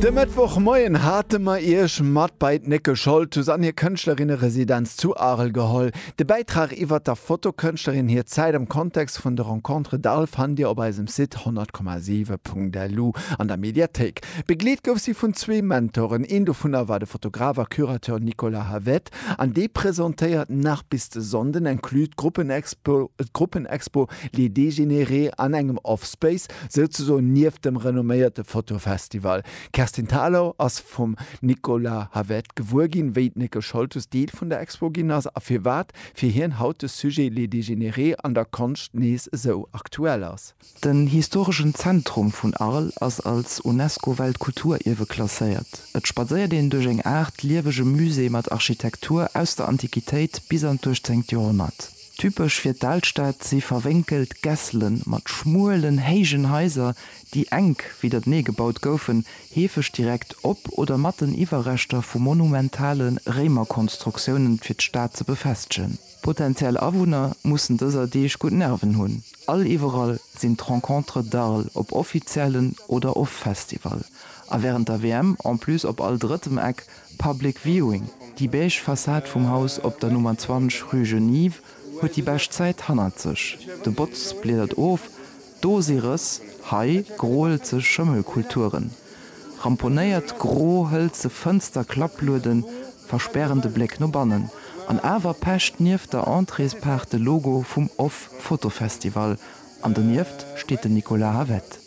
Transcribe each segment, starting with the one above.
De Mëttwoch Moien hate mer Iech mat bei d'Nickel Scholtus an hir Kënschtlerinne-Residenz zu Arel geholl. De Bäitrag iwwert der Fotokënschtlerin hir Zäit am Kontext vun de Rencontres d'Arles fannt Dir op eisem Site 100,7.lu an der Mediathéik. Begleet gouf si vun zwee Mentoren, een dovunner war de Fotograf a Curateur Nicolas Havet an dee presentéiert nach bis de Sonnden inclus d'Gruppenexpo Les Dégénérés an engem Offspace Souzesoen nieft dem renomméierte Fotofestival. D'Kerstin Thalau ass vum Nicolas Havet gewuer ginn, wéi d'Nicole Scholtes Deel vun der Expo ginn ass a firwat fir hien haut de Sujet Les Dégénérés an der Konscht nees esou aktuell ass. Den historeschen Zentrum vun Arles ass als UNESCO-Weltkulturierwe klasséiert. Et spadséiert een duerch eng Aart liewege Musée mat Architektur aus der Antiquitéit bis an d'uechtzéngt Joerhonnert. Typesch fir d'Alstad si verwénkelt Gässelen mat schmuelen, héijen Haiser, déi enk widdertenee gebaut goufen, heefeg direkt op oder mat den Iwwerreschter vu monumentale Réimerkonstruktiounen, fir d'Stad ze befestegen. Potentiell Awunner mussen dëser Deeg gutt Nerven hunn, all iwwerall sinn d'Rencontres d'Arles, op offiziellen oder of Festival, a wärend der WM en plus op all drëttem Eck, Public Viewing, Déi beige Fassad vum Haus op der Nummer 20 rue Genive huet déi bescht Zäit hannert sech. De Botz bliedert of, d'Dose rëss, hei groelzeg Schëmmelkulturen. Ramponéiert gro hëlze Fënster Klapplueden verspären de Bléck no bannen. An awer pecht nieft der Entréespaart de Logo vum off. Fotofestival an donieft steet den Nicolas Havet.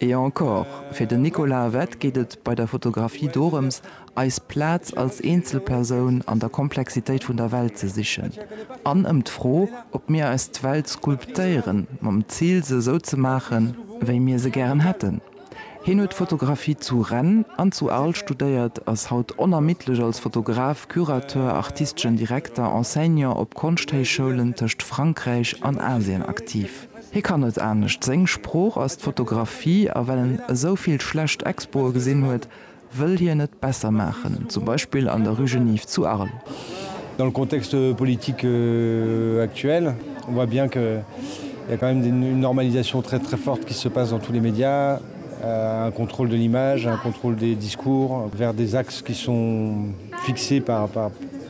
Et encore, Fir den Nicolas Avette geet et bei der Fotografie dorëms, eis Plaz als Eenzelpersoun an der Komplexitéit vun der Welt ze sichen an ëm d'Fro, ob mir eis d'Welt sculptéieren, mam Zil, se esou ze maachen, wéi mir se gären hätten. Hien huet Fotografie zu Rennes an zu Arles studéiert, ass haut onermiddlech als Fotograf, Curateur, artisteschen Direkter, Enseignant op Konschthéichschoulen tëscht Frankräich an Asien aktiv. Hie kann net anescht, seng Sprooch ass d'Fotografie a well en esou vill schlecht Expoe gesinn huet, wëll hien et besser maachen, zum Beispill an der Rue Geniv zu Arles. Dans le contexte politique actuel, on voit bien qu'il y a quand même une normalisation très très forte qui se passe dans tous les médias, un contrôle de l'image, un contrôle des discours vers des axes qui sont fixés par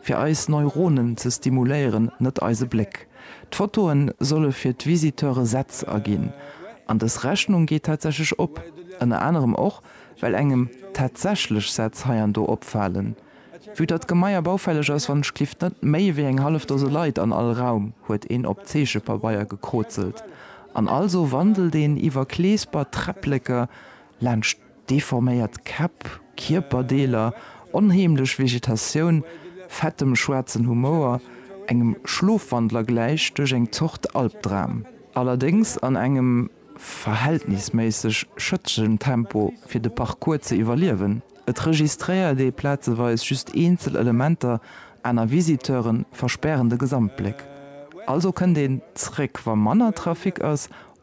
fir eis Neuronen ze stimuléieren, net eise Bléck. D'Fotoe solle fir d'Visiteure Sätz erginn. An dës Rechnung geet tatsächlech op, ënner anerem och, well engem tatsächlech Sätz hei an do opfalen. Vue datt d'Gemaier baufälleg ass, wannechgelift net méi wéi eng hallef Dose Leit an all Raum, huet een op Zeechepabeier gekrozelt an also wandelt een iwwer Kleesper, Träppleker laanscht. Deforméiert Käpp, Kierperdeeler, onheemlech Vegetatioun, fettem schwaarzen Humouer, engem Schlofwandler gläich duerch eng Zort Albdram. Allerdéngs an engem verhältnisméisseg schëttegen Tempo fir de Parcours ze iwwerliewen. Et registréiert ee plazeweis just eenzel Elementer, aner Visiteure verspären de Gesamtbléck. Also kënnt een zréck wa manner Trafic ass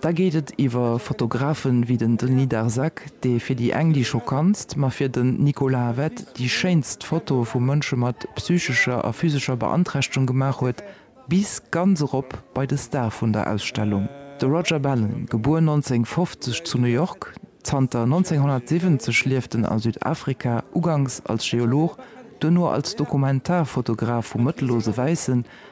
Da geet et iwwer Fotografen wéi den Denis Darzac, dee fir déi eng déi schockantst, ma fir den Nicolas Havet déi schéinst Fotoe vu Mënsche mat psychescher a physescher Beanträchtegung gemaach huet, bis ganz erop bei de Star vun der Ausstellung, de Roger Ballen, gebuer 1950 zu New York, zanter 1970 lieft en a Südafrika, ugangs als Geolog, duerno als Dokumentarfotograf vu mëttellose Wäissen,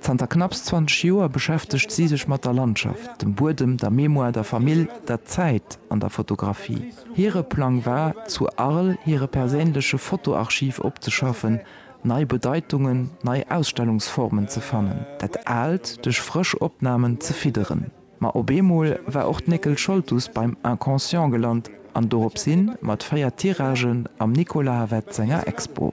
Zanter knapps 20 Joer beschäftegt si sech mat der Landschaft, dem Buedem, der Mémoire, der Famill, der Zäit an der Fotografie. Hire Plang war, zu Arles hire perséinleche Fotoarchiv opzeschaffen, nei Bedeitungen, nei Ausstellungsformen ze fannen, dat Aalt duerch frësch Opnamen ze fidderen. Ma op eemol war och d'Néckel Scholtus beim Inconscient gelant an doropshin mat 4 Tiragen am Nicolas Havet senger Expo.